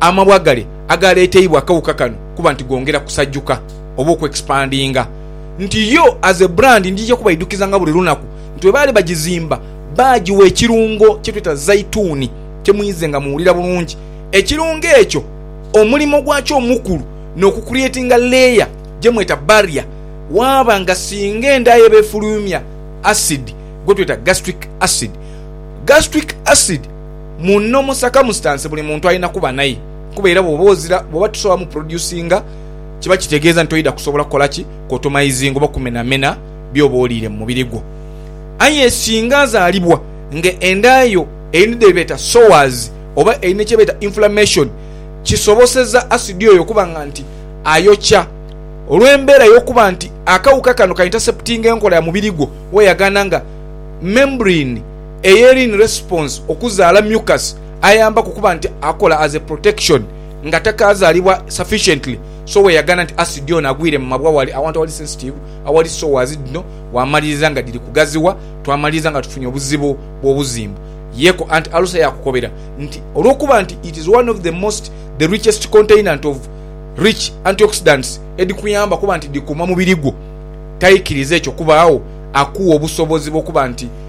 amabwa gale agaaleeteibwa akawuka kano kuba nti gongera kusajuka oba okwexpandinga, nti yo as a brand ndija kubaidhukizanga buli lunaku nti bwe baali bagizimba baagiwa ekirungo kye tweta zaituni kye muidhe nga muwulira bulungi. Ekirungo ekyo omulimo gwakyo omukulu n'okucreatinga layer gye mweta barrier waaba nga singa endhaya eba efulumya acid gwe tweta gastric acid. Gastric acid. muno mu circumstance buli muntu alina kuba naye kuba era bwoba ozira bwoba tosobola mu producinga kiba kitegeeza nti toidha kusobola kukola ki kuotomizinga oba kumenamena byoba oliire mu mubiri gwo aye singa azalibwa nga enda yo eri dhebeeta sores oba eri ne kyebeeta inflammation kisoboseza acid oyo okuba nga nti ayokya olwembeera yokuba nti akawuka kano ka interceptinga enkola ya mubiri gwo weyagaana nga membrene Eyelin Response okuzaala mucus ayambaku okuba nti akola as a protection nga takazalibwa sufficiently so weyagana nti acid ono agwire mu mabwa wali awantu awali sensitive awali sores dhino wamaliriza nga dhiri kugaziwa twamaliriza nga tufunye obuzibu bwobuzimbu yeko anti alusa yakukobera nti olwokuba nti it is one of the most the richest containant of rich antioxidants edhikuyamba okuba nti dhikuuma mubiri gwo taikiriza ekyo kubaagho akuwa obusobozi bwokuba nti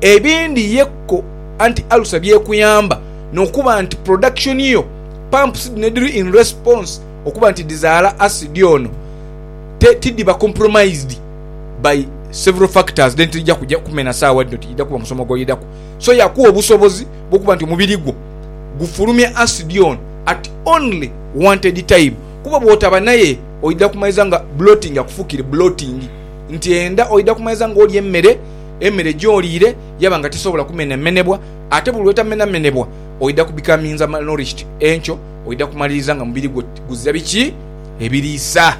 Ebindi ye ko anti alusa byekuyamba nokuba nti production yo pumps dhino edhiri in response okuba nti dhizaala acid ono te tidhiba compromised by several factors then tidhija kuja kumena saawa dhino tidhija kuba musomo gwoidhaku so yakuwa obusobozi bwokuba nti omubiri gwo gufulumya acid ono at only wanted time kuba bwotaba naye oidha kumaliza nga bloating akufukire bloating nti enda oidha kumaliza nga olya emmere Emere gyoliire yaba nga tesobola kumenhamenhebwa, ate buli lw'etamenhamenhebwa oidha kubikaminza malnourishti enkyo oidha kumaliriza nga mubiri gwo guzira biki? Ebiriisa.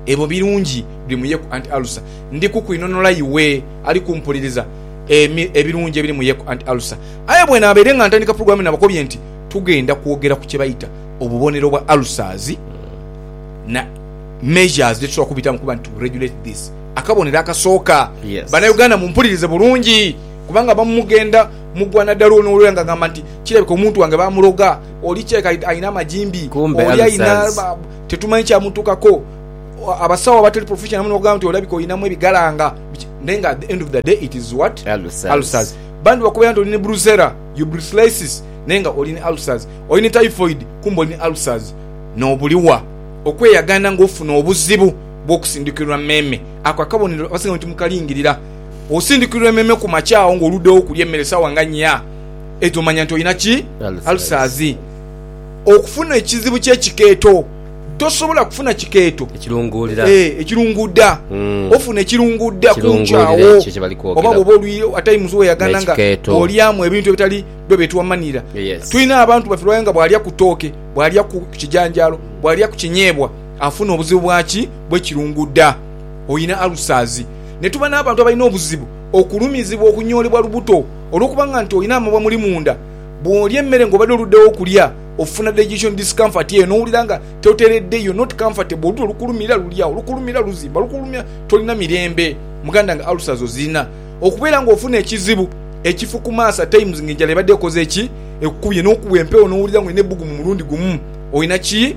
Ebyo birungi biri mu yeku anti alusa. Ndi kukwinhonola iwe ali kumpuliriza emi, ebirungi ebiri mu yeku anti alusa. Aye bwenaabaire nga ntandika pulogulaamu naabakobye nti tugenda kwogera ku kye baita obubonero bwa alusazi na measures dhetusobola okubitamu okuba nti to regulate this. Akabonero akasooka, Banauganda mumpulirize bulungi kubanga abamu mugenda mugwa nadala ono lwera nga agamba nti kirabika omuntu wange bamuloga, oli kirabika alina amajimbi, oli alina tetumanyi kyamutukako, abasawo abatali professional muno bakugamba nti olabika olinamu ebigalanga biki naye nga at the end of the day it is what? Ulcers. Bambi bakubeera nti oli ni brucella, your brucellisis, naye nga oli ni ulcers. Oli ni typhoid kumbe oli ni ulcers. Nobuliwa okweyagana nga ofuna obuzibu. bw'okusindikirwa emeeme. Ako akabonero abasinga bwe timukalingirira. Osindikirwa emeeme ku makya agho ng'oluddewo okulya emmere sawa nga nnya edho manya nti olina ki? Ulcers. Okufuna ekizibu ky'ekikeeto. Tosobola kufuna kikeeto. Ekirunguudda. Ofuna ekirunguudda ku nkya agho oba bw'oba oli atayimuzi weyagana nga bw'olyamu ebintu ebitali byo bye tuwamanira. Tulina abantu baffe lw'aye nga bw'alya ku tooke, bw'alya ku kijanjaalo, bw'alya ku kinyeebwa, afuna obuzibu bwa ki bw'ekirunguda, oina ulcers. Ne tuba n'abantu abalina obuzibu okulumizibwa okunyoolebwa lubuto olw'okuba nga nti olina amabwa muli munda. Bw'olya emmere ng'obadde oluddewo okulya, ofuna digestion discomfort eyo n'owulira nga toteredde, you're not comfortable, olutu lukulumira luli agho, lukulumira luzimba, lukulumira tolina mirembe. Muganda wange ulcers ozirina? Okubeera ng'ofuna ekizibu ekifu ku maaso at times ng'enjala ebadde ekoze ki? Ekukubye, n'okubwa empewo n'owulira ng'olina ebbugumu mulundi gumu, olina ki?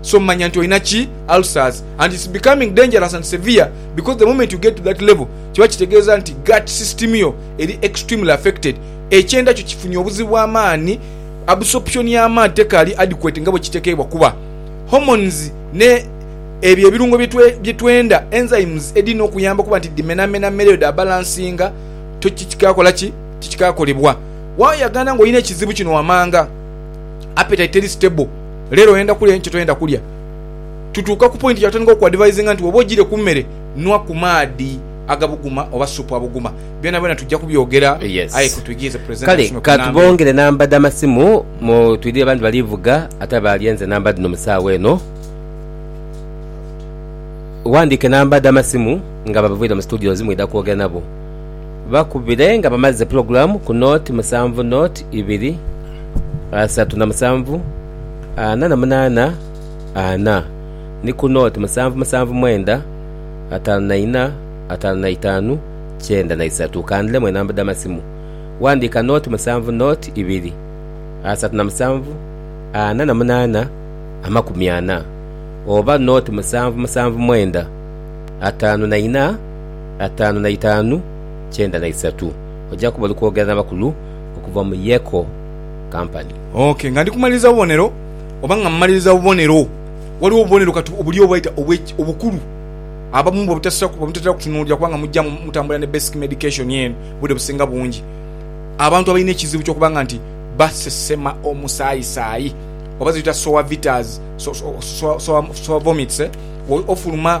so manya nti olina ki ulcers and it's becoming dangerous and severe because the moment you get to that level kiba kitegeeza nti gut system yo eri extremely affected ekyenda kyo kifunye obuzibu bwa maani absorption ya maani tekaali adequate nga bwekitekeebwa kuba hormones ne ebyo ebirungo byetwenda enzymes edhirina okuyamba okuba nti dhimenamena mmere yo dha balancinga to tikikakola ki tikikakolebwa wayagana nga olina ekizibu kino wamanga appetite teri stable. Leero oyenda kulya aye kyotoyenda kulya. Tutuuka ku pointi yatandika okuadvisinga nti woba ojire ku mere nwa ku maadhi agabuguma oba supu abuguma. Byonabyona tujja kubyogera aye kotwigirize presenter Kale tusome ku namba eno. katubongere namba dha masimu mu twidhire abandi bali vuga ate abalyenze namba dhino mu saawa eno. Wandike namba dha masimu nga babavwire mu studios mwidha kwogera nabo. Bakubire nga bamaze pulogulaamu ku noti musanvu noti ibiri asatu na musanvu ana na munaana ana ni ku noti musanvu musanvu mwenda ataanu na ina ataanu na itaanu kyenda na isatu. Kandhiremu enamba dh'amasimu. Wandiika noti musanvu noti ibiri asatu na musanvu ana na munaana amakumi ana oba noti musanvu musanvu mwenda ataanu na ina. ataanu na itaanu kyenda na isatu. Ojja kuba oli kwogera n'abakulu okuva mu Yeko Company. Ok, nga ndi kumaliriza bubonero, oba nga mmaliriza bubonero, waliwo obubonero kati obuli obwaita obw'eki, obukulu, abamu bwe butasira, bwe mutatera kutunuulira, kubanga mujja mu, mutambulira ne basic medication eno, obudde businga bungi, abantu abalina ekizibu ky'okuba nga nti basesema omusaayisaayi, oba ze tuyita sour vitas, so, so, sour, sour, sour vomits, eh? Wo, ofuluma.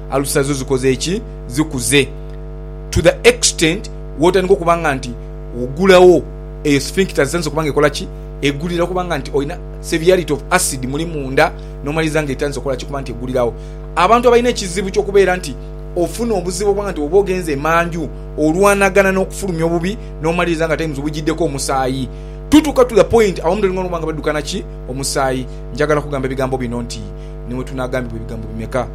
Alusa zo zikoze ki? Zikuze to the extent wotandika okuba nga nti ogulawo eyo sphincter zitandise okuba nga ekola ki? Egulira okuba nga nti olina seviality of acid muli munda nomaliriza nga etandise okukola ki? Okuba nti egulirawo. Abantu abalina ekizibu kyokubeera nti ofuna obuzibu okuba nga nti bwoba ogenze emanju olwanagana nokufulumya obubi nomaliriza nga times bujiddeko omusaayi. Tutuuka to the point abamu tolina okuba nga badukana ki? Omusaayi. Njagala kugamba ebigambo bino nti niwetunagambibwa ebigambo bimeka?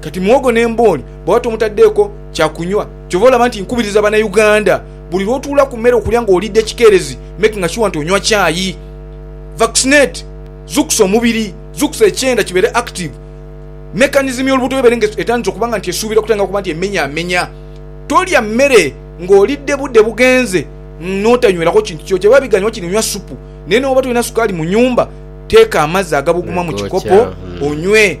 Kati muwogo ne mbooli bwaba tomutaddeeko kya kunywa. Kyova olaba nti nkubiriza bana Uganda buli lwotuula ku mere okulya nga olidde kikeerezi making sure nti onywa kyayi. Vaccinate. Zukusa omubiri. Zukusa ekyenda kibeere active. Mechanism y'olubuto yo ebeere nga etandise okuba nga nti esuubira kutandika kuba nti emenyamenya. Tolya mere nga olidde budde bugenze notanywerako kintu kyoki. Ebiba biganye wakiri nywa supu. Naye newooba tolina sukaali mu nyumba teeka amazzi agabuguma mu kikopo onywe.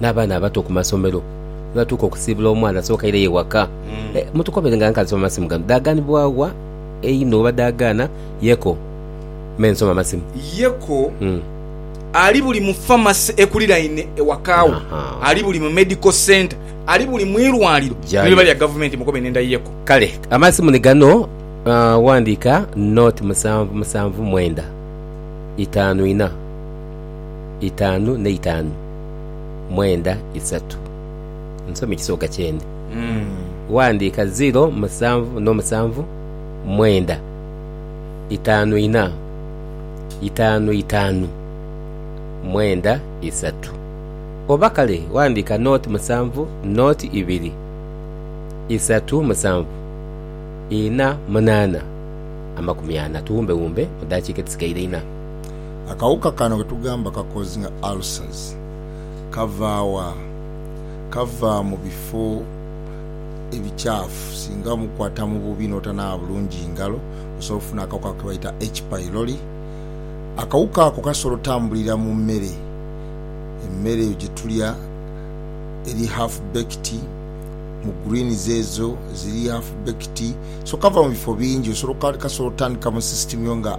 n'abaana abato ku masomero. Ni batuuka okusiibula omwana, asooka aireyo ewaka. Eh, mutukobere nga nkansoma amasimu gano dhaaganibwa wa einho oba dhaagaana? Yeko, Me nsoma amasimu. Yeko, Mm. Ali buli mu famasi ekuliraine ewaka wo, Aha. ali buli mu medical centre, ali buli mu irwaliro ni Jayo. liba lya gavumenti. Mukobe nenda Yeko. Kale, amasimu ni gano, ah, wandiika nought musanvu musanvu mwenda itaanu ina. itaanu n'eitaanu mwenda isatu. Nsome ekisoga kyene. Ghandiika ziro musanvu n'omusanvu mwenda itaanu ina itaanu itaanu mwenda isatu. Oba kale ghandiika nooti musanvu nooti ibiri isatu musanvu ina munaana amakumi ana. Tuwumbewumbe mu daakiika edhisigaire ina. Akawuka kano ke tugamba ka kozinga ulcers kava wa? Kava mu bifo ebikyafu. Singa omukwata mu bubi n'otanaaba bulungi ngalo, osobola okufuna akawuka ako ke baita H. pylori. Akawuka ako kasobola otambulira mu mere. Emere eyo gye tulya eri half baked, mu greens ezo eziri half baked. So kava mu bifo bingi. Osobola, kasobola otandika mu system yo nga.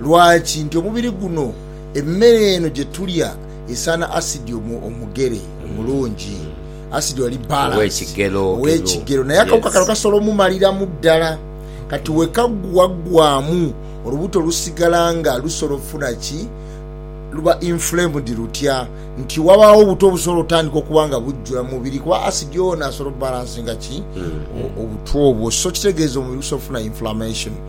Lwaki? Nti omubiri guno, emere eno gye tulya esaana asidi omugere, omulungi. Asidi ali balanced, ow'ekigero. Naye akawuka kano kasobola omumaliramu ddala. Kati we kaggwaggwaamu, olubuto lusigala nga lusobola okufuna ki? Luba inflamed lutya? Nti wabaawo obuto obusobola otandika okuba nga bujjula mu mubiri, kuba asidi ono asobola obalancinga ki? Obuto obwo. So kitegeeza omubiri gusobola okufuna inflammation.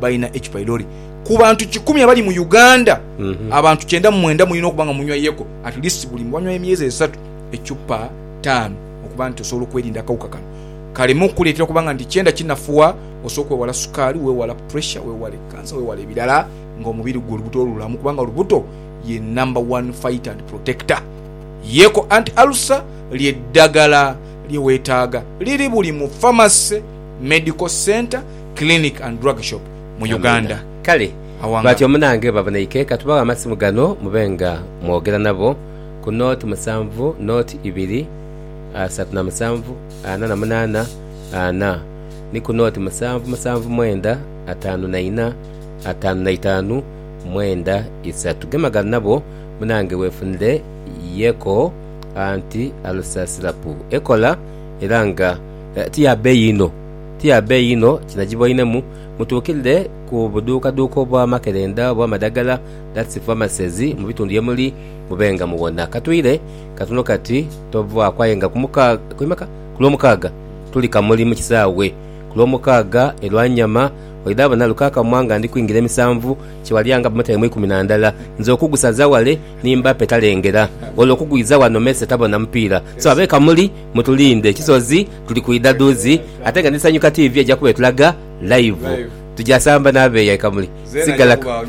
balina ekipailoli ku bantu kikumi abali mu Uganda, mm -hmm. abantu kyenda mu mwenda mulina okuba nga munywa yeko at least buli wanywa emyezi esatu ecupa taano okuba nti osobola okwerinda akawuka kano kaleme okukuleetera okuba nga nti kyenda kinafuwa osobola okwewala sukaali, wewala pressure, wewale kansa, wewala ebirala nga omubiri gwe olubuto olulamu kubanga olubuto ye number one fighter and protector. Yeko anti alusa lye ddagala lye wetaaga liri buli mu pharmacy, medical center Clinic and Drug Shop mu Uganda. Amiina. Kale Awanga. batyo munange babonaike, ka tubaghe amasimu gano mube nga mwogera nabo ku nought musanvu nought ibiri asatu na musanvu ana na munaana ana ni ku nought musanvu musanvu mwenda ataanu na ina ataanu na itaanu mwenda isatu. Gemagana nabo munange wefunire Yeko Anti Ulcer Syrup ekola era nga ti ya beeyi inho. Ti ya beeyi inho kinagiboinemu, mutuukirire ku buduukaduuka obw'amakerenda obw'amadagala, that's pharmacies, mu bitundu ye muli, mube nga muwona. Ka twire katono kati tovaaku aye nga ku Lwomukaaga tuli Kamuli mu kisaawe. Ku Lwomukaaga e Lwanyama oidha bona Lukakamwa nga ndi kwingira e Misanvu kye walya nga bamutaire mu ikumi na ndala. Nze okugusaza wale ni mba petalengera, olwo okugwiza wano mese tabona mupiira. So ab'e Kamuli. Mutulinde ekisozi tuli kwidha dhuuzi ate nga ni Sanyuka TV eja kuba etulaga live. Tuja samba na beeya e Kamuli. Sigala Kamuli!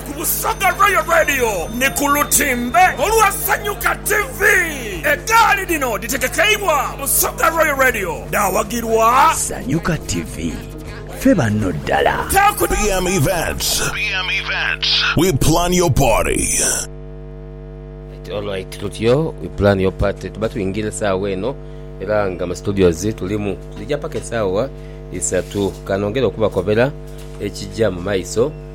Ku Busoga Royal Radio ni ku lutimbe olwa Sanyuka TV. Egaali dhino dhitegekeibwa Busoga Royal Radio dhaawagirwa. Sanyuka TV, ffe banno ddala. Taaku. BM Events. BM Events. We plan your party. Right, alright tutyo we plan your party tuba tuingira esaawa eno era nga mu studios tulimu tulija paka esaawa isatu kanongera okubakobera ekija mu maiso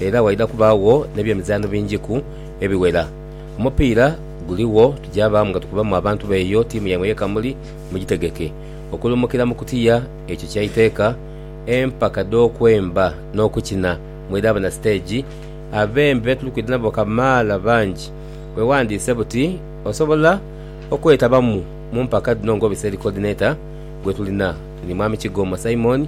Era waidha kubaagho n'ebyemizaanho bingiku ebiwera. Omupiira guligho, tuja baamu nga tukubamu abantu b'eyo tiimu yaimwe ye Kamuli, mugitegeke okulumukira mu kutiya ekyo kya iteeka, empaka dh'okwemba n'okukina mwidhaaba na siteegi. Abembi be tuli kwidha nabo kamaala bangi. Weewandiise buti osobola okwetabamu mu mpaka dhino ng'obiseri Coordinator gwe tulina ni Mwami Kigoma Simon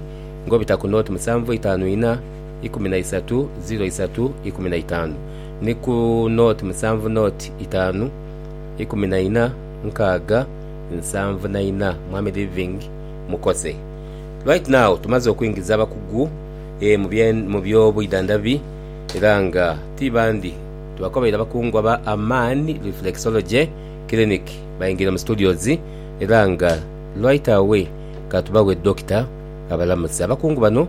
ng'obita ku nooti musanvu itaanu inha, ikumi na isatu, ziro isatu, ikumi na itaanu, ni ku nooti musanvu nooti itaanu, ikumi na ina, nkaaga, nsanvu na ina. Mwami Living, Mukoze right now. Tumaze okuingiza abakugu mu by'obwidhandhabi era nga ti bandi tubakobeire abakungu aba Amaani Reflexology Clinic baingiire mu studios era nga right away ka tubaghe Dokita abalamuse. Abakungu bano.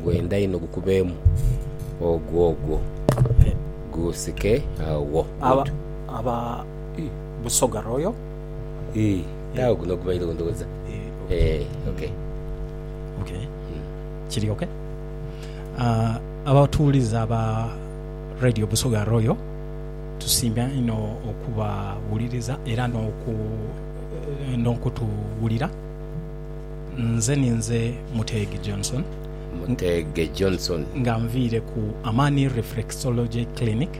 Ngwenda inho gukubeemu ogwo ogwo guusike agho. Aba Busoga Royal. Ii, naagho guno gubairogho ndowooza. Ee, ok. Ok, kiri ok. Abatuwuliza aba Radio Busoga Royal, tusiima inho okubawuliriza era n'okutuwulira. Nze ninze Muteege Johnson. Muteege Johnson. Nga nviire ku Amani Reflexology Clinic.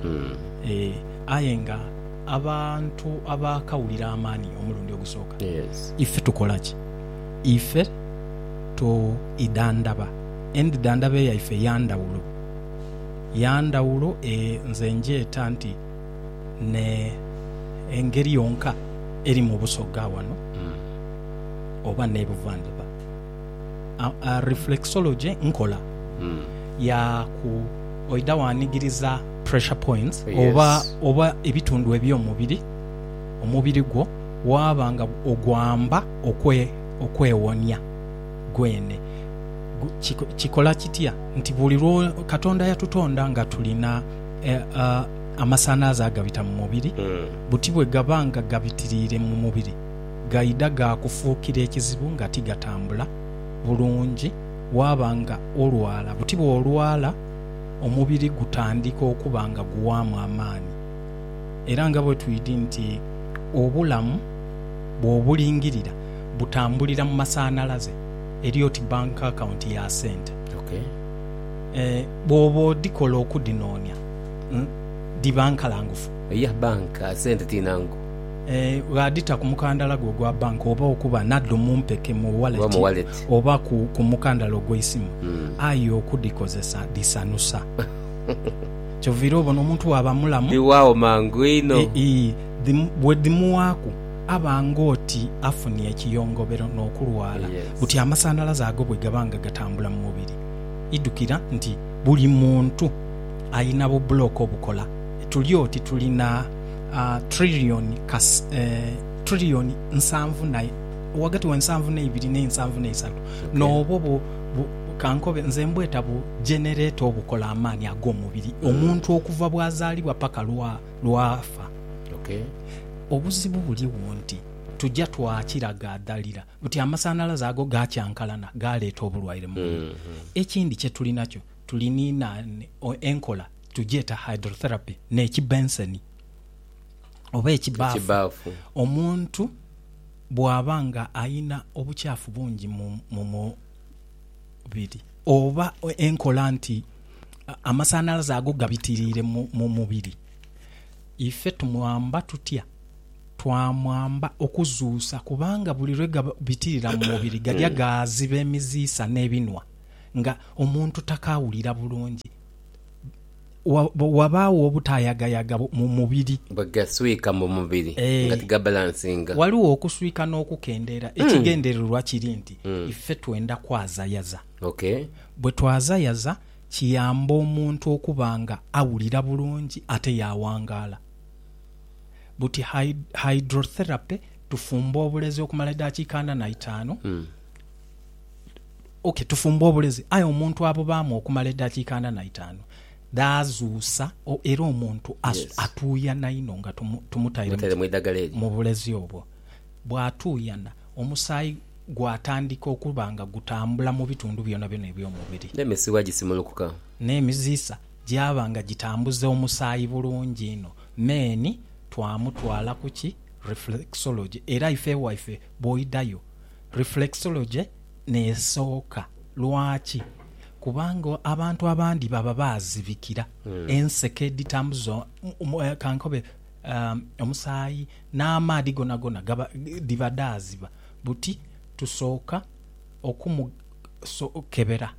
Aye nga abantu abaakawulira Amani omulundi ogusooka, ife tukola ki? Ife twidhandhaba. Endidhandhaba yaife ya ndhawulo. Ya ndhawulo, nze ngyeta nti. ne engeri yonka eri mu Busoga wano oba ne Buvandhuba. Reflexology nkola ya ku oidha wanigiriza pressure points oba oba ebitundhu ebyo mubiri omubiri gwo waaba nga ogwamba okwewonia gwene. Kikola kitya nti buli lwo, Katonda yatutonda nga tulina. e, a, amasanhalaze agabita mu mubiri, buti bwe gaba nga gabitiriire mu mubiri, gaidha ga kufuukira ekizibu nga ti gatambula bulungi, waaba nga olwala. Buti bw'olwala, omubiri gutandika okuba nga guwaamu amaani. Era nga bwe twidi nti obulamu bw'obulingirira butambulira mu masanhalaze, eri oti bank account ya sente. Okay. Bwooba odhikola okudhinoonia, dhiba nkalangufu. Eya banka sente ti nangu. Ghadhita ku mukandala gwo ogwa banka oba okuba nadho mu mpeke mu wallet oba ku mukandala ogw'eisimu. Aye okudhikozesa dhisanusa. Kyoviira obona omuntu bwaba mulamu. Dhiwaagho mangu inho. Ii, Bwedhimuwaaku aba ng'oti afunie ekiyongobero n'okulwala buti amasanhalaze ago bwegaba nga gatambula mu mubiri. idhukira nti buli muntu alina bubulooka obukola. Tuli oti tuli na trillioni trillioni nsanvu na, ghagati we nsanvu n'eibiri ne nsanvu n'eisatu. N'obwo bu, bu, kankobe, nze mbweta bu jenereeta obukola amaani ag'omubiri, omuntu okuva bw'azaalibwa paka lwa, lw'afa. Obuzibu buligho nti tuja twakira gaadhalira. Buti amasanhalaze ago gaakyankalana, gaaleeta obulwaire mu mubiri. Ekindi kye tuli nakyo, tuli ni na enkola tugyeta hydrotherapy n'ekibenseni oba ekibaafu. Omuntu bw'aba nga alina obukyafu bungi mu mu mubiri oba enkola nti amasanhalaze ago gabitiriire mu mubiri, Ife tumwamba tutya? Twamwamba okuzuusa, kubanga buli lwe gabitirira mu mubiri gaja gaaziba emiziisa n'ebinhwa, nga omuntu takaawulira bulungi, ghabaagho obutaayagayaga mu mubiri. Bwe gaswika mu mubiri nga tigabalansinga. Ghaligho okuswika n'okukendeera. Ekigendererwa kiri nti ife twenda kwazayaza. Bwe twazayaza, Kiyamba omuntu okuba nga awulira bulungi ate yaawangaala. Buti hydrotherapy, tufumba obulezi okumala edaakiika ana na itaanu. Ok, tufumba obulezi aye omuntu abubaamu okumala edaakiika ana na itaanu dhaazuusa era omuntu atuuyana inho nga tumutaire mu bulezi obwo. Bw'atuuyana, omusaayi gwatandika okuba nga gutambula mu bitundu byonabyona eby'omubiri. N'emisiwa gisimulukuka. N'emiziisa gyaba nga gitambuza omusaayi bulungi inho. Men. Twamutwala ku ki? Reflexology. Era ife ewaife bw'oidhayo, reflexology n'esooka. Lwaki? Kubanga abantu abandi baba baazibikira enseke edhitambuza, ka nkobe, Omusaayi n'amaadhi gonagona dhiba dhaaziba buti tusooka okumukebera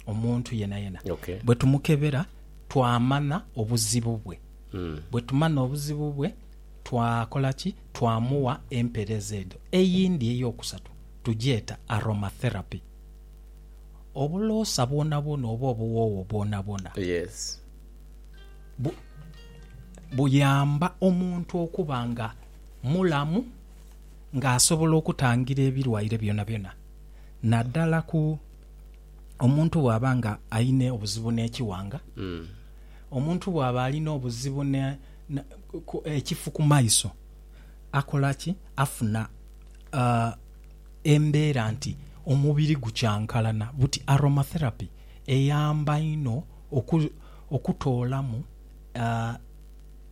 omuntu yenayena. Bwe tumukebera twamanha obuzibu bwe. Bwe tumanha obuzibu bwe twakola ki? Twamugha empereeza edho. Eyindi ey'okusatu tugyeta aromatherapy. Obuloosa bwonabwona oba obuwoowo bwonabwona. buyamba omuntu okuba nga mulamu nga asobola okutangira ebirwaire byonabyona naddala ku omuntu bw'aba nga alina obuzibu n'ekiwanga, omuntu bw'aba alina obuzibu n'ekifu ku maiso akola ki? Afuna embeera nti omubiri gukyankalana. Buti Aroma Therapy eyamba inho. okutoolamu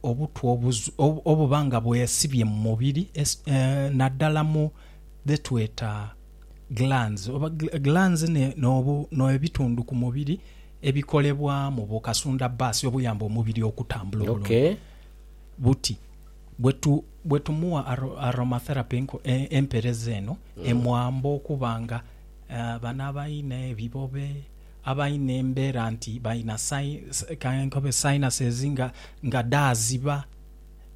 obutwa obuba nga bwesibye mu mubiri naddala mu dhetweta glands. Oba glands no ebitundu ku mubiri ebikolebwamu bu kasunda bbaasi obuyamba omubiri okutambula obulungi buti bwetumugha aromatherapy empereza eno emwamba okuba nga bano abalina ebibobe Abalina embeera nti balina kankobe sinuses nga nga dhaaziba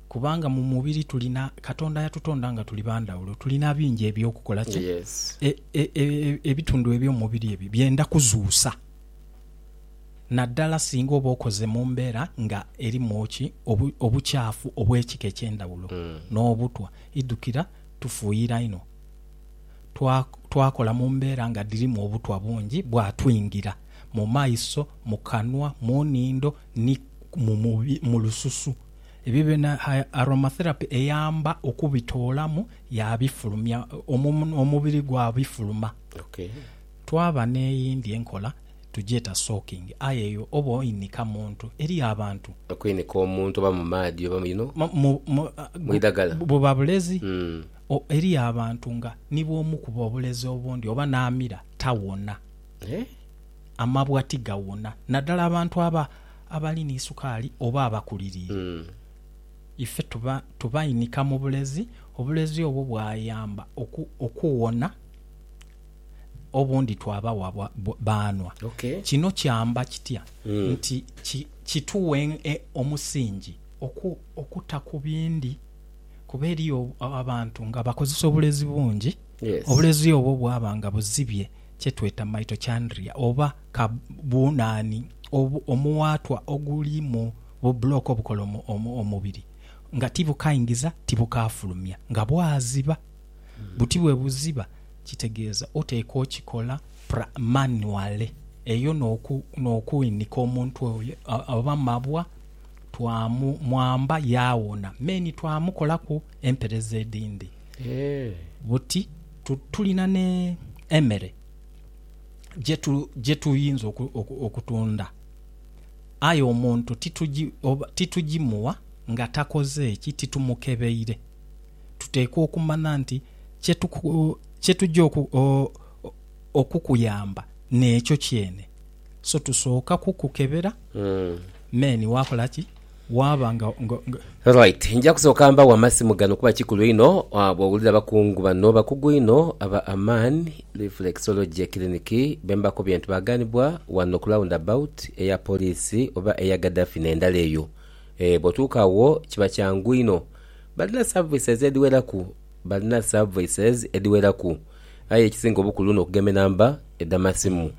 kubanga mu mubiri tulina, Katonda yatutonda nga tuli ba ndhawulo, tulina bingi eby'okukola. Kye e, e, e, ebitundu eby'omubiri ebyo byenda kuzuusa, naddala singa oba okoze mu mbeera nga erimu ki, obu, obukyafu obw'ekika eky'endhawulo, n'obutwa. Idhukira tufuuyira inho. twakola mu mbeera nga dhirimu obutwa bungi bwatwingira mu maiso, mu kanwa, mu nhindo ni mu lususu. Ebibiina aromatherapy eyamba okubitoolamu yaabifulumya, omubiri gwabifuluma. Twaba n'eyindi enkola tugyeta soaking aye eyo oba oinika muntu. Eriyo abantu. Okwinika omuntu oba mu maadhi oba mu idhagala. Buba bulezi O, eriyo abantu nga ni bw'omukuba obulezi obundi oba n'amira, tawona. Eh? Amabwa tigawona, naddala abantu aba, abali ni sukaali oba abakuliriire. Mm. Ife tuba, tubainika mu bulezi, obulezi obwo bwayamba oku, okuwona, obundi twabawa bwa, bwa, baanhwa. Ok. Kino kyamba kitya? Mm. Nti ki, kituwa en, e, omusingi oku, okuta ku bindi. Kuba eriyo abantu nga bakozesa obulezi bungi, obulezi obwo bwaba nga buzibye kye tweta mitochondria oba ka bunani omuwaatwa oguli mu bu block obukola omubiri nga tibukaingiza tibukaafulumya. Nga bwaziba buti bwe buziba kitegeeza oteekwa okikola manually eyo n'okwinika omuntu oyo oba mabwa twamwamba yaawona, me ni twamukolaku empereza edhindi. Buti tulina n'emere gye tuyinza okutunda, aye omuntu titugimuwa nga takoze ki? Titumukebeire. Tuteekwa okumanya nti kye tugya okukuyamba n'ekyo kyene. So tusooka kukukebera meni waakola ki? Waaba nga, nga, nga. Right. Nja kusooka mbawe amasimu gano kuba kikulu inho bw'owulira abakungu bano bakugu inho aba Aman Reflexology Clinic be mbakobye nti baagaanibwa wano ku round about eya poliisi oba eya Gaddafi n'endala eyo. Eeh, bw'otuuka agho kiba kyangu inho. Balina services edhiweraku, balina services edhiweraku aye ekisinga obukulu n'okugema enamba edh'amasimu.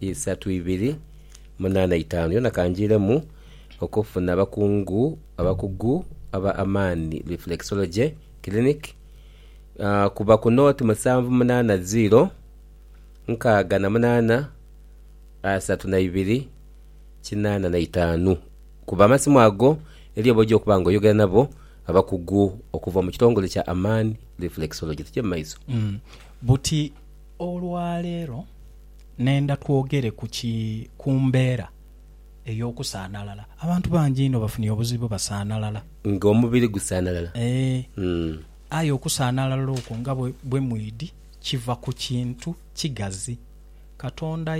isatu ibiri munaana itaanu yona kangiiremu okufuna abakungu abakugu aba Amani Reflexology Clinic kuba ku nooti musanvu munaana ziiro nkaaga na munaana asatu na ibiri kinaana na itaanu kuba amasimu ago eriyo boja okuba nga oyogera nabo abakugu okuva mu kitongole kya Amani Reflexology. Tuje mu maiso. Buti olwaleero. Nenda twogere ku ki ku mbeera ey'okusaanalala. Abantu bangi inho bafunye obuzibu basaanalala. Nga omubiri gusaanalala? Ee. Aye okusaanalala okwo nga bwe mwidhi kiva ku kintu kigazi. Katonda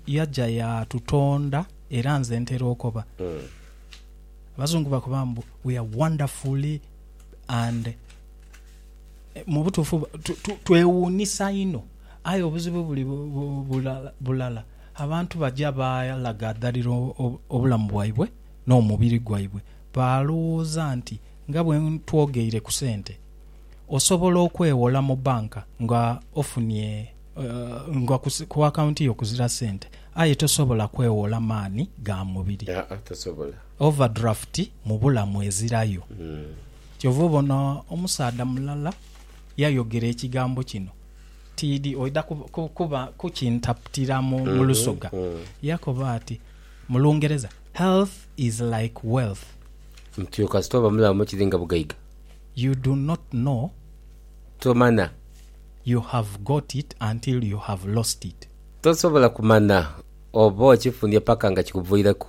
yaja yaatutonda era nze ntera okoba. Abazungu bakoba mbu, We are wonderfully and. Mu butuufu twewuunisa inho. Aye obuzibu buli bulala, abantu baja baalagadhalira obulamu bwaibwe n'omubiri gwaibwe. Baalowooza nti nga bwe ntwogeire ku sente, osobola okwewola mu banka nga ofunye nga ku akaunti yo kuzira sente aye tosobola kwewola maani ga mubiri. Aa tosobola. Overdraft mu bulamu ezirayo. Kyova obona omusaadha mulala yayogera ekigambo kino tiidhi oidha kuba kukintaputira mu Lusoga. Yakoba ati mu Lungereza, Health is like wealth. Nti oyo kasita oba mulamu kiri nga bugaiga. You do not know. Tomanya. You have got it until you have lost it. Tosobola kumanya oba okifunye paka nga kikuviireku.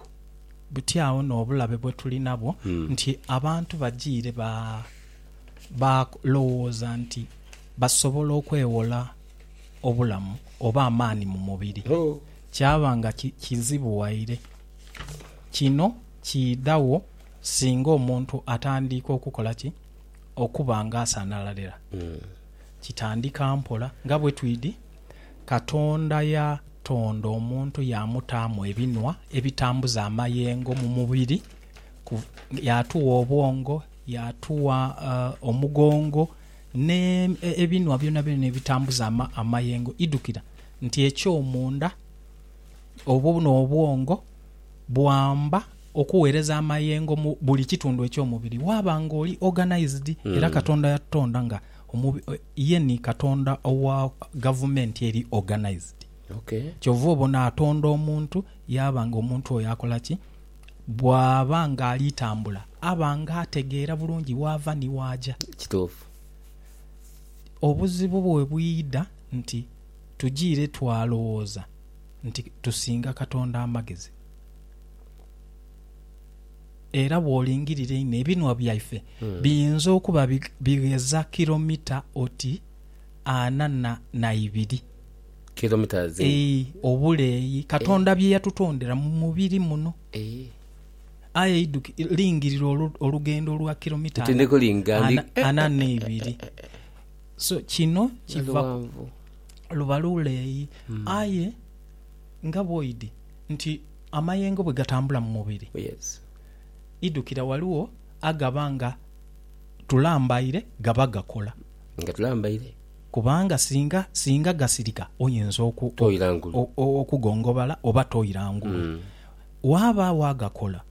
Buti agho n'obulabe bwe tuli nabwo nti abantu bajiire ba lowooza nti Basobola okwewola obulamu oba amaani mu mubiri, kyaba nga kizibu waire. Kino kiidhagho singa omuntu atandiika okukola ki? Okuba nga asanhalalira. Kitandika mpola. Nga bwe twidi, Katonda yatonda omuntu yaamutaamu ebinhwa ebitambuza amayengo mu mubiri, yaatugha obwongo, yaatugha omugongo, N'ebinhwa byonabyona ebitambuza amayengo, idhukira nti ekyomunda oba n'obwongo bwamba okugheereza amayengo mu buli kitundu eky'omubiri. Waaba ng'oli organised, era Katonda yatutonda nga ye ni Katonda owa gavumenti eri organised. Kyova obona atonda omuntu yaaba ng'omuntu oyo akola ki? Bw'aba ng'ali tambula, aba ng'ategeera bulungi waava ni waaja. Kituufu. Obuzibu bwe bwidha nti tujiire twalowooza nti tusinga Katonda amagezi. Era bw'olingirira einho, ebinhwa byaife biyinza okuba bigheza kilomita oti ana na ibiri. kilometres. Eeh obuleeyi Katonda bye yatutondera mu mubiri muno. Aye idhuki, lingirira olugendo lwa kilomita ana n'eibiri. So kino kiva ku, luba luleeyi. Aye nga bwoidhi nti amayengo bwe gatambula mu mubiri, idhukira ghaligho agaba nga tulambaire gaba gakola. Nga tulambaire. Kubanga singa, singa gasirika, oyinza oku, Toira ngulu. o, o, okugongobala, oba toira ngulu. Waabaawo agakola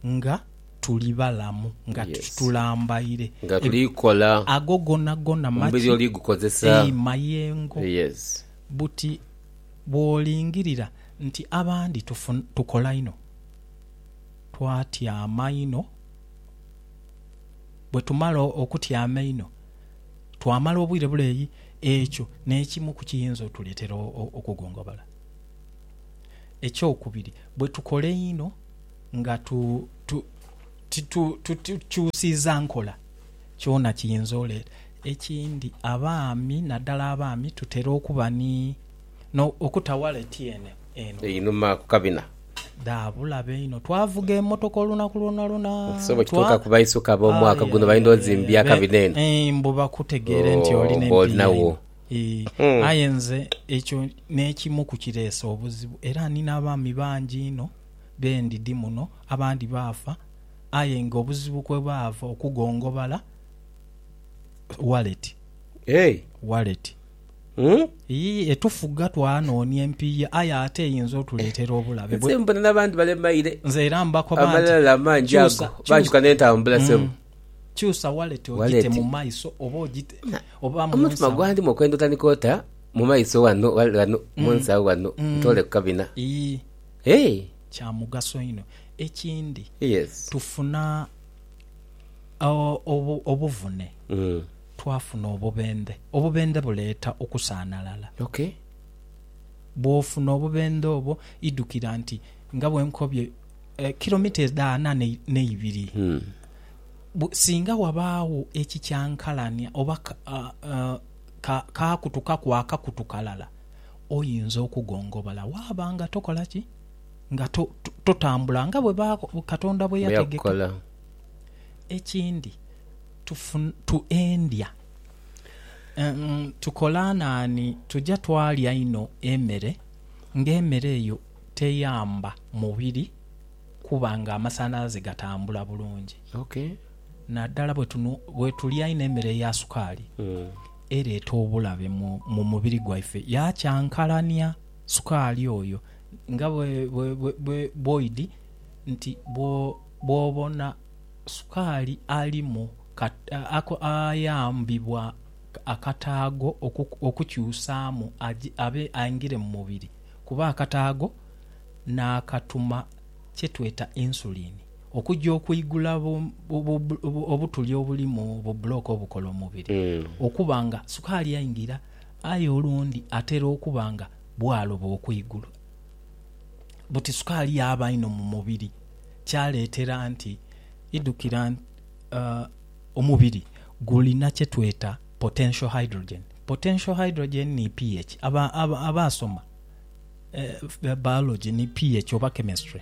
nga tuli balamu, nga tu, Yes. tulambaire. Nga Eb- tuli kola, Ago gonagona omubiri maki? oli gukozesa. Ei, mayengo. Yes. Buti bw'olingirira nti abandi tufu, tukola inho, twatyama inho, bwe tumala o, okutyama einho, twamala obwire buleeyi, ekyo n'ekimu ku kiyinza otuleetera okugongobala. Ekyokubiri, bwe tukola einho nga titukyusiiza nkola, kyona kiyinza oleeta. Ekindi, abaami, naddala abaami, tutera okuba ni. no okuta waleti eno eno. Einhuma ku kabina. Dha bulabe inho. Twavuga emotoka olunaku lwonalwona. Nti so bwe kituuka ku baisuka ab'omwaka guno baidha ozimbya akabina eno. Eeh mbu bakutegeere nti oli n'empiiya inho. Eeh aye nze ekyo n'ekimu ku kireese obuzibu era ni n'abaami bangi inho be ndidi muno abandi baafa aye nga obuzibu kwe baava okugongobala waleti. Waleti. Yii, etufuga twanoonia empiiya, aye ate eyinza otuleetera obulabe. Nze mbona n'abandi balemaire. Nze era mbakoba nti. Amalala amangi ago baajuka n'entambula sebo. Kyusa waleti ogite mu maiso oba ogite oba mu nsawo. Omutima gwandimu okwenda otandika ota mu maiso wano wano mu nsawo wano ntoole ku kabina. Yii, kya mugaso inho. Ekindi tufuna obuvune. Twafuna obubendhe. Obubendhe buleeta okusaanalala. Ok. Bw'ofuna obubendhe obwo, idhukira nti, nga bwe nkobye, kilomita edha ana n'eibiri, singa wabaagho ekikyankalania oba kaakutukaku akakutu kalala, oyinza okugongobola waaba nga tokola ki? Nga totambula nga bwe Katonda bwe yategeka. Ekindi, Tufutuendya, tukola naani? Tuja twalya inho emere, ng'emere eyo teyamba mubiri kuba ng'amasanhalaze gatambula bulungi. Naddala bwetulya inho emere eya sukaali, ereeta obulabe mu mubiri gwaife, yakyankalania sukaali oyo. Nga bwoidhi nti bwobona Sukaali alimu ayambibwa akataago okukyusaamu abe aingire mu mubiri kuba akataago n'akatuma kye tweta insulin okuja okwigula obutuli obuli mu bubulooka obukola omubiri okuba nga sukaali aingira aye olundi atera okuba nga bwaloba okwigulu buti sukaali yaaba inho mu mubiri. kyaleetera nti idhukira nti omubiri gulina kye tweta potential hydrogen. Potential hydrogen ni pH. Abaasoma biology ni pH oba chemistry.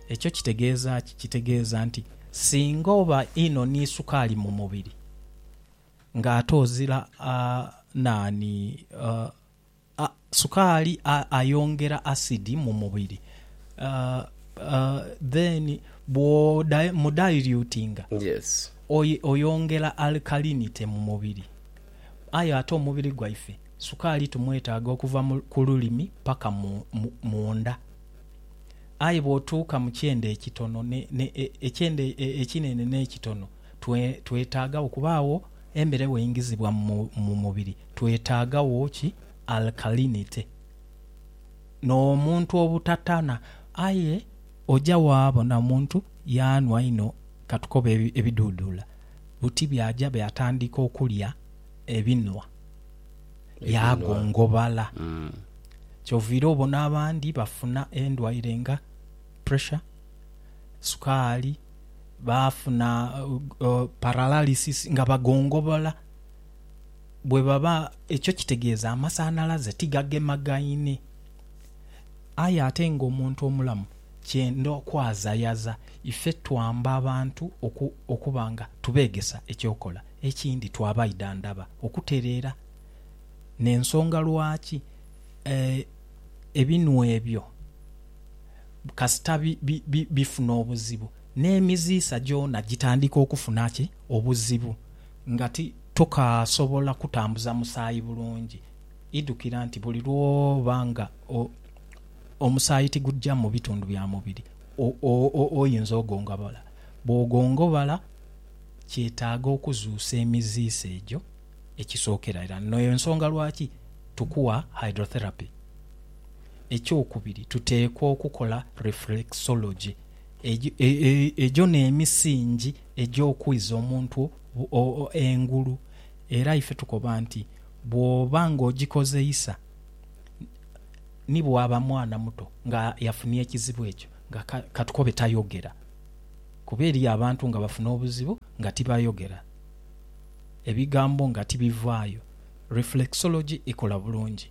Ekyo kitegeeza ki? Kitegeeza nti singa oba inho ni sukaali mu mubiri ng'ate ozira naani? Sukaali ayongera asidi mu mubiri then bwo mu dilutinga oyongera alkalinity mu mubiri aye ate omubiri gwaife sukaali tumwetaaga okuva ku lulimi paka munda aye bwotuuka mu kyenda ekitono ekyenda ekinene n'ekitono twetaaga okubaagho embere bweingizibwa mu mubiri. Twetaagagho ki alkalinity n'omuntu obutatana? Aye oja waabona omuntu yaanhwa inho katukobe ebiduuduula buti byaja byatandika okulya ebinhwa yaagongobala. Kyoviira obona abandi bafuna endwaire nga pressure, sukaali, baafuna paralysis nga bagongobola. bwe baba, ekyo kitegeeza amasanhalaze tigagemagaine. Aye ate ng'omuntu omulamu kyenda okwazayaza. Ife twamba abantu oku, okuba nga tubeegesa eky'okola. Ekindi, twabaidha ndaba okutereera n'ensonga lwaki e, ebinhwa ebyo kasita bi, bi, bi, bifuna obuzibu, n'emiziisa gyona gitandika okufuna ki? Obuzibu. Nga ti tokaasobola kutambuza musaayi bulungi, idhukira nti buli lw'oba nga omusaayi tigugya mu bitundu bya mubiri oyinza ogongobala. Bw'ogongobala, kyetaaga okuzuusa emiziise egyo ekisookera irala. Eno y'ensonga lwaki tukuwa hydrotherapy. Ekyokubiri, tuteekwa okukola reflexology. Egyo n'emisingi. egy'okwiza omuntu engulu. Era ife tukoba nti, Bw'oba ng'ogikozeisa, ni bw'aba mwana muto nga yafunye ekizibu ekyo, nga ka tukobe tayogera. Kuba eriyo abantu nga bafuna obuzibu nga tibayogera, ebigambo nga tibivaayo. Reflexology ekola bulungi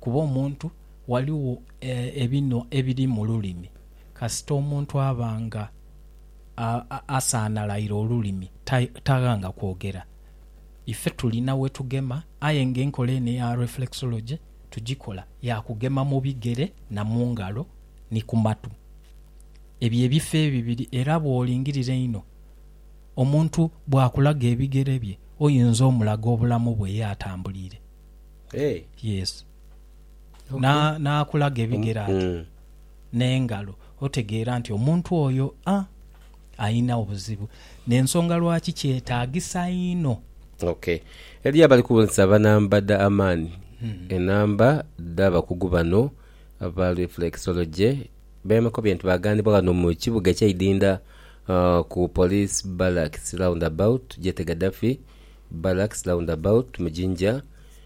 kuba omuntu ghaligho ebinhwa ebiri mu lulimi kasita omuntu aba nga. asaanalaire olulimi, taghanga kwogera. Ife tulina we tugema aye ng'enkola eno eya reflexology tugikola ya kugema mu bigere na mu ngalo ni ku matu. Ebyo ebifo ebibiri era bw'olingirira einho omuntu bw'akulaga ebigere bye oyinza omulaga obulamu bwe ye atambuliire. Yes. N'akulaga ebigere ati n'engalo, otegeera nti omuntu oyo alina obuzibu. N'ensonga lwaki kyetaagisa inho. Ok. Eliyo abali kubonesa banamba dha amaani. Enamba dh'abakugu bano aba Reflexology bemakobye nti baaghanibwa ghano mu kibuga ekye Idinda ku Police Barracks Roundabout, Jete Gaddafi Barracks Roundabout mu Jinja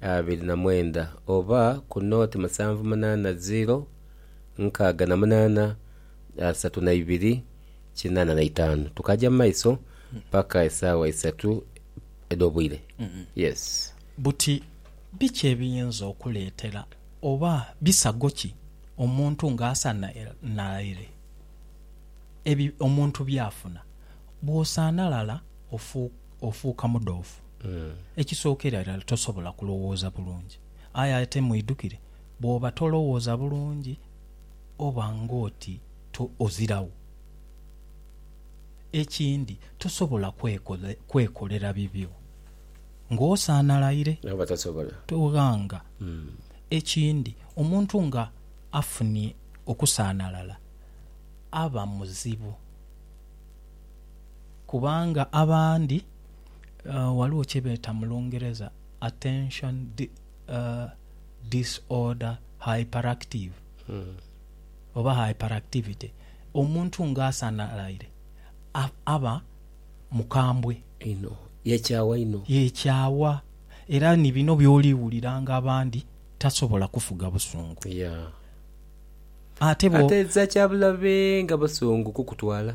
abiri na mwenda oba ku nooti musanvu munaana ziiro nkaaga na munaana asatu na ibiri kinaana na itaanu tukaja mu maiso paka esaawa isatu edh'obwire. Yes. Buti biki ebiyinza okuleetera oba bisago ki omuntu ng'asanhalaire ebyo omuntu by'afuna? Bw'osanhalala ofuuka. Ofuuka mudhoofu. Ekisookera irala tosobola kulowooza bulungi. Aye ate mwidhukire, bw'oba tolowooza bulungi oba ng'oti to, oziragho. Ekindi, tosobola kwekole, kwekolera bibyo ng'osaanalaire. Nabo batasobola. Toghanga. Ekindi, omuntu nga afunye okusaanalala aba muzibu. Kubanga abandi ghaligho kye beeta mu Lungereza attention disorder hyperactive oba hyperactivity, omuntu ng'asanhalaire aba mukambwe einho, yeekyawa inho. Yeekyawa. Era ni bino by'oli wuliranga abandi tasobola kufuga busungu. Ate bwo. Ate za kya bulabe nga busungu kukutwala.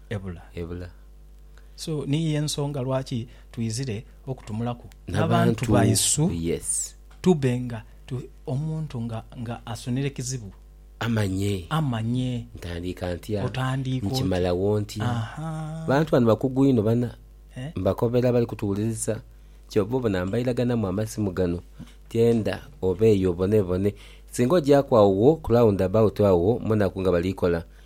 ebula. Ebula. So niyo y'ensonga lwaki twizire okutumulaku n'abantu baisu tube nga omuntu nga asunire kizibu amanye, amanye ntandiika ntya, otandiika otya, nkimalawo ntya. Abantu bano bakugu inho bana, mbakobera abali kutuwuliriza. Kyova obona mbairaganamu amasimu gano tyenda obeeyo obonebone. Singa ogyaaku agho wo ku round about agho munaku nga bali kola,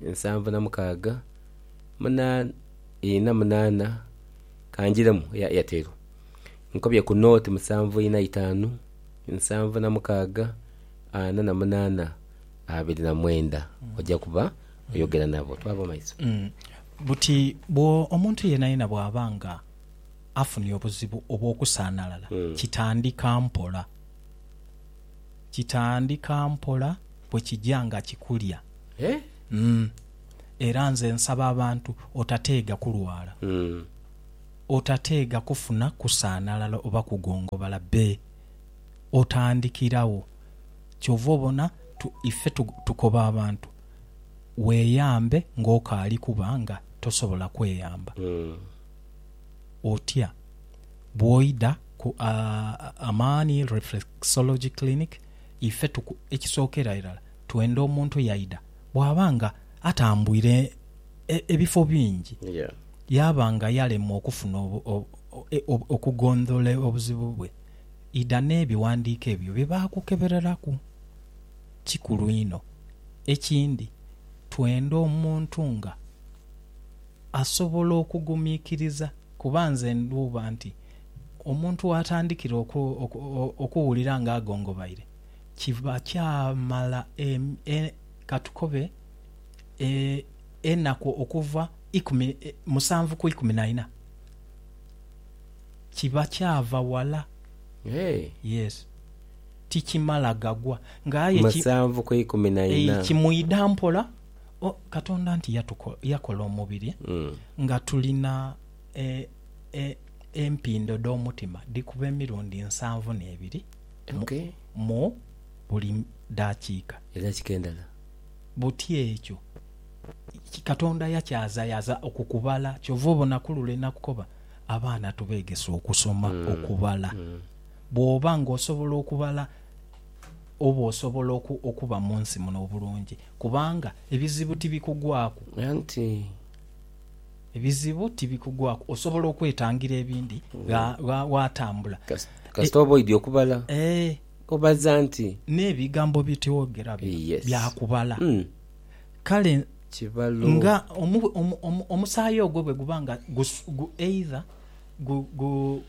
nsanvu na mukaaga muna ina munaana kanjiremu eya Airtel nkobye ku nooti musanvu ina itaanu nsanvu na mukaaga ana na munaana abiri na mwenda oja kuba oyogera nabo twaba mumaiso. Buti bwo omuntu yenayena bwaba nga afunye obuzibu obwokusanalala kitandika mpola. kitandika mpola bwe kija nga kikulya. Umm era nze nsaba abantu otateega kulwala, otateega kufuna kusaanalala oba kugongobala be otandikiragho. Kyova obona tu ife tu tukoba abantu weeyambe ng'okaali kuba nga tosobola kweyamba otya. Bwoidha ku Amani Reflexology Clinic ife tuku ekisookera irala twenda omuntu yaidha bwaba nga atambwire ebifo bingi yaaba nga yalemwa okufuna okugondhola obuzibu bwe idha n'ebighandiiko ebyo bye baakukebereraku. Kikulu inho ekindi twenda omuntu nga asobola okugumikiriza. Kuba nze ndhuuba nti omuntu waatandikira okuwulira ng'agongobaire, kiba kyamala e, ka tukobe e, enaku okuva ikumi, musanvu ku ikumi na ina, kiba kyava wala. Yes. Tikimala gagwa. Ng'aye ki, Musanvu ku ikumi na ina. ei, kimwidha mpola. O, Katonda nti yatuko, yakola omubiri nga tulina e, e, empindo dh'omutima dhikuba emirundi nsanvu n'ebiri mu, Ok. mu buli daakiika. Edaakiika endala. Buti ekyo ki, Katonda yakyazayaza okwo kubala. Kyova obona ku lule nakukoba, abaana tubeegese okusoma okubala. Bw'oba ng'osobola okubala. oba osobola okuba mu nsi muno obulungi, kubanga ebizibu tibikugwaku. Anti. Ebizibu tibikugwaku. Osobola okwetangira ebindi gha, gha, ghatambula. Kasita oba oidhi okubala. Ee. Obaza nti. N'ebigambo bye twogera bino. Yes. Bya kubala. Mm. Kale. Kibalo. Nga omu, omu, omu, omusaayi ogwo bwe guba nga gus, gu, either gu, gu,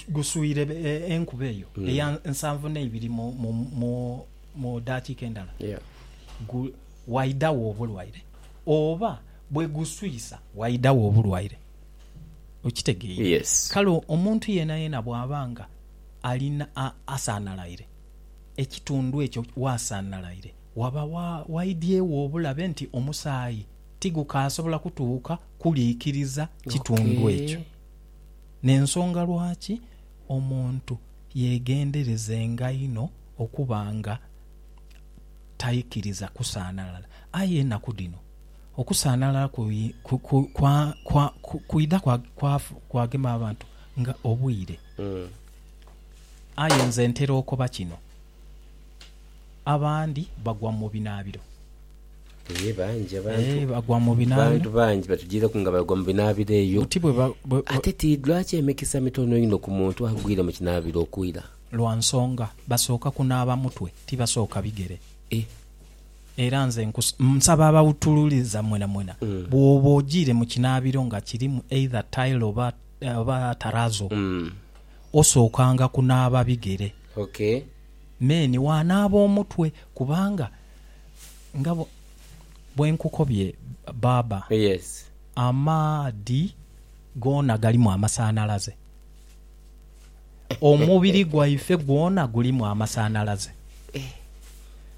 guswire enkuba eyo mm. eya nsanvu neibiri mu, mu, mu, mu dakiika endala yeah. waidawo obulwaire oba bwe guswisa waidawo obulwaire okitegeire yes. kale omuntu yena yena bwaba nga alina asanalaire ekitundu ekyo wasanalaire waba waidyewo obulabe nti omusaayi tigukasobola kutuuka kuliikiriza kitundu ekyo okay. N'ensonga lwaki omuntu yeegenderezenga inho okuba nga taikiriza kusaanalala. Aye enaku dhino okusaanalala kwidha kwagema abantu nga obwire. Aye nze ntera okoba kino, abandi bagwa mu binaabiro. Eeh bangi abantu Eeh bagwa mu binaabiro. Abantu bangi batujireku nga bagwa mu binaabiro eyo. Buti bwe ba, bwe, bwe. Ate ti lwaki emikisa mitono inho ku muntu agwire mu kinaabiro okwira? Lwa nsonga basooka kunaaba mutwe, tibasooka bigere. Eh. Era nze nkus, nsaba abawutululiza mwenamwena, Mm. bwooba ojiire mu kinaabiro nga kirimu either tile oba, oba tarazo, Mm. osookanga kunaaba bigere. Okay. Then waanaaba omutwe, kubanga. Nga bwe nkukobye baaba, amaadhi goona galimu amasanhalaze. Omubiri gwaife gwona gulimu amasanhalaze.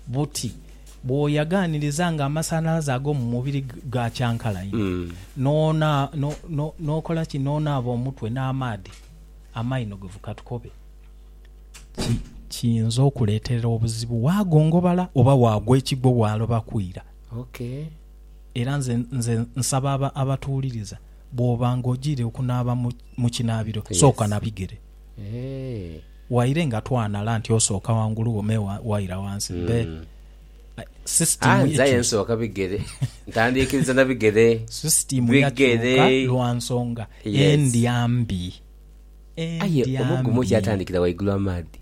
Buti bw'oyaganiriza nga amasanhalaze ag'omu mubiri gaakyankalainhe, n'okola ki? N'onaaba omutwe n'amaadhi, amaino ge vukatukobe. kiyinza okuleeterera obuzibu waagongobala oba waagwa ekigwo waaloba kwira. Era nze nze nsaba aba abatuwuliriza bw'oba ng'ogiire okunaaba mu mu kinaabiro sooka na bigere. Waire nga twanhala nti osooka ghangulu wo me waira ghansi me sisitiimu ye nze nsooka bigere ntandiikiriza na bigere sisitiimu yakyuka lwa nsonga endya mbi. Aye omugumu gyatandikira waigulu amaadhi.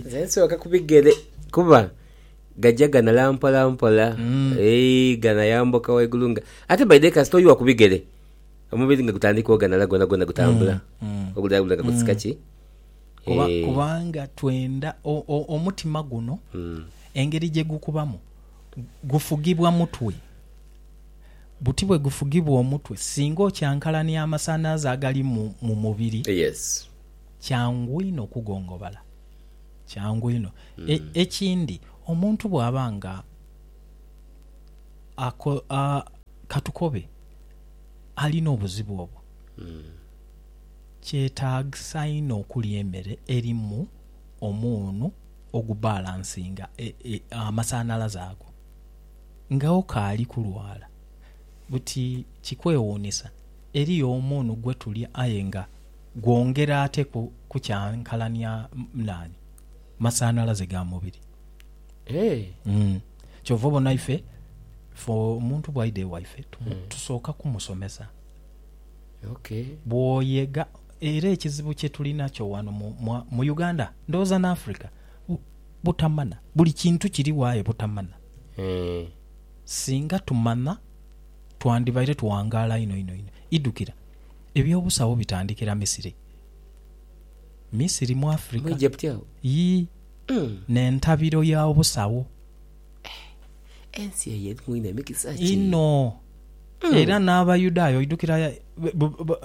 Nze nsooka ku bigere kuba gagya ganala mpolampola, ganayambuka waigulu nga... Ate by the way kasita oiwa ku bigere, omubiri nga gutandika oganala gwonagwona gutambula, oguleeyo gulaga kutsika ki. Kubanga twenda omutima guno engeri gyegukubamu. Gufugibwa mutwe. Buti bwe gufugibwa omutwe, singa okyankalania amasanhalaze agali mu mubiri, kyangu inho okugongobala. Kyangu inho. Ekindi, omuntu bw'aba nga katukobe alina obuzibu obwo, kyetaagisa inho okulya emere erimu omunhu. ogubalansinga amasanhalaze ago nga okaali kulwala. Buti kikwewuunisa, eriyo omuunu gwe tulya aye nga gwongera ate kukyankalania naani? Masanhalaze ga mubiri. Kyova obona ife, ife omuntu bwaidha ewaife tusooka kumusomesa. Bwoyega. Era ekizibu kye tuli nakyo wano mu, mu, mu Uganda, ndowooza n'Africa, bu, butamana. Buli kintu kirigho aye butamana. Singa tumana, twandibaire tuwangaala inho, inho, inho. Idhukira, eby'obusawo bitandikira Misiri. Misiri mu Mu Africa. Egypt agho? Yii. N'entabiro ya obusawo Ensi eyo erimu inho emikisa ki? Inho. Hmm. Era n'Abayudaaya oidukira eh,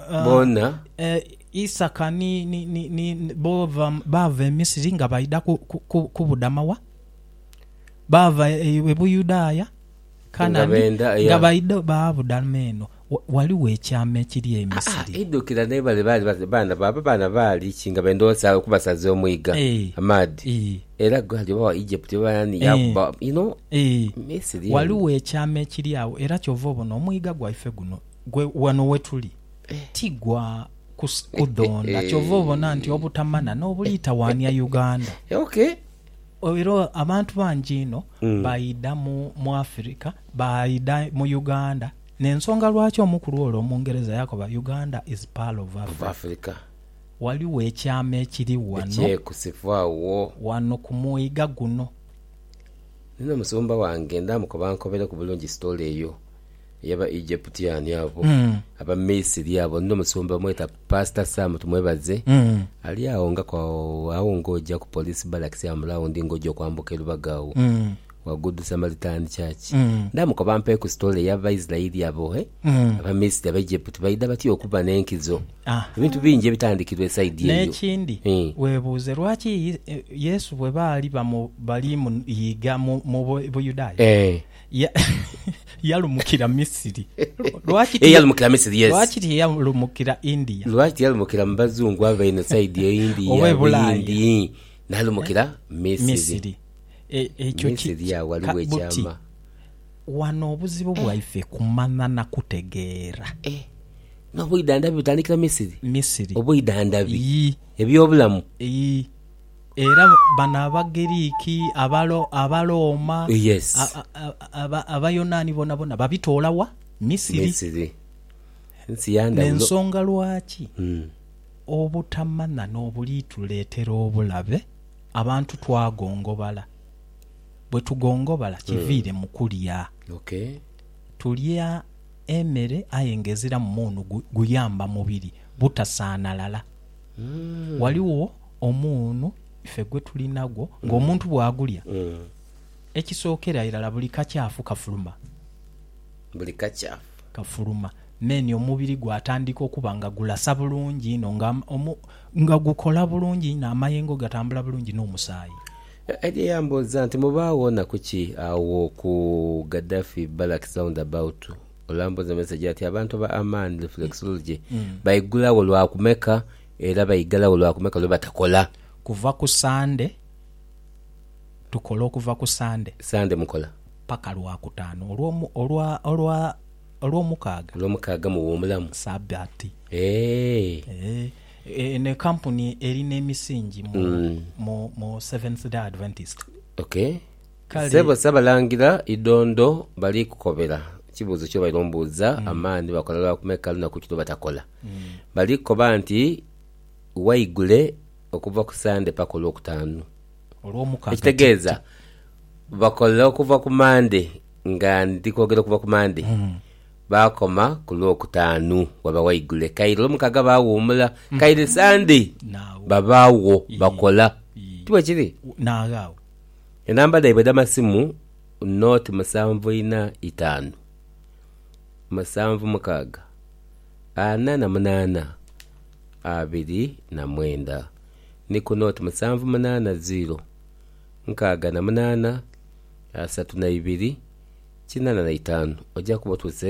ah, bona eh, Isaka ni, ni, ni, ni, bo baava e Misiri nga baidha kubudama wa? Baava e, e Buyudaaya Kanani nga baidha baabudama eno. Ghaligho ekyama ekiri e Misiri. Aa, idhukira naye bale baali baana bo, abo baana baali ki nga benda okubasaza omwiga, amaadhi, era gali oba Egypt oba ani yaakuba, you know, Misiri eyo. Ghaligho ekyama ekiri agho, era kyova obona omwiga gwaife guno gwe wano wetuli ti gwa kudhonda, kyova obona nti obutamana n'obulitawaania Uganda. Okay. Era abantu bangi inho baidha mu Africa, baidha mu Uganda N'ensonga lwaki omukulu ole Omungereza yakoba Uganda is pearl of Of Africa. Africa. Ghaligho ekyama ekiri ghano. Ekyekusifwa wo. Ghano ku mwiga guno. Nina omusumba wange ndaamukoba ankobereku bulungi story eyo ey'aba Egyptian abo, aba Misiri abo. Nina omusumba bamweta Pastor Sam, tumwebaze, ali agho nga ku agho, agho ng'oja ku Police Barracks awo mu round ng'oja okwambuka e Lubaga agho. Wa good Samaritan church. Ndamukoba mpe ku story ya Baisraeli abo he aba Misiri aba Egypt baidha batya okuba ne nkizo. Ebintu bingi ebitandikirwa e side eyo. Nekindi webuuze lwaki Yesu bwe baali bali mu iiga mu Buyudaaya yalumukira Misiri? Lwaki tiyalumukira India? Lwaki tiyalumukira mu bazungu abo einho side eyo India, Buyindi, nalumukira Misiri? Ekyo ki, ka, buti. Wano obuzibu bwaife kumanya na kutegeera. Eh, n'obwidhandhabi butandikira Misiri? Misiri. Obwidhandhabi. Yii. Eby'obulamu. Yii. Era bano Abagiriki, Abalo, Abalooma, Yes. a, a, a, aba, Abayonaani bonabona babitoola wa? Misiri. Misiri. Nsi ya ndhawulo. N'ensonga lwaki obutamanya n'obuliituleetera obulabe. Abantu twagongobala. Bwe tugongobala kiviire mu kulya. Tulya emere aye ng'eziramu muunu guyamba mubiri butasaanalala. Ghaligho omuunu ife gwe tulinagwo ng'omuntu bw'agulya, ekisookera irala buli kakyafu kafuluma. Buli kakyafu. Kafuluma. Mmeeni omubiri gwatandika okuba nga gulasa bulungi inho nga Nga gukola bulungi inho, amayengo gatambula bulungi n'omusaayi. Eddie yambuuza nti, Mubaagho nnaku ki agho ku Gaddafi Barracks Roundabout? Olambuuza mesegi ati, Abantu ba Amani Reflexology baigulagho lwa kumeka era baigalagho lwa kumeka lwe batakola? Kuva ku Sande, tukola okuva ku Sande. Sande mukola? Paka Lwakutaano olwa, olwa, olwa. Olwomukaaga. Olwomukaaga muwumulamu. Saabbiati. Eehh. Eehh. Eno ekampuni eri nemisingi mu, mu, mu Seventh Day Adventist. Ok. Kale. Ssebo Ssabalangira, Idondo bali kukobera, ekibuuzo kyobaire ombuuza, amaani bakola lwa kumeka lunaku ki lwebatakola? Bali kukoba nti waigule okuva ku Sande paka Olwokutaanu. Ekitegeeza bakola okuva ku Mande nga ndi kwogera okuva ku Mande, baakoma ku Lwokutaanu waba waigule. Kaire Olwomukaaga baawuumula, kaire Sande babaagho bakola. Ti bwekiri? Enamba dhaibwe edh'amasimu naught musanvu ina itaanu musanvu mukaaga ana na munaana abiri na mwenda. ni ku nooti musanvu munaana ziiro nkaaga na munaana, asatu na ibiri, kinaana na itaanu. Oja kuba otuse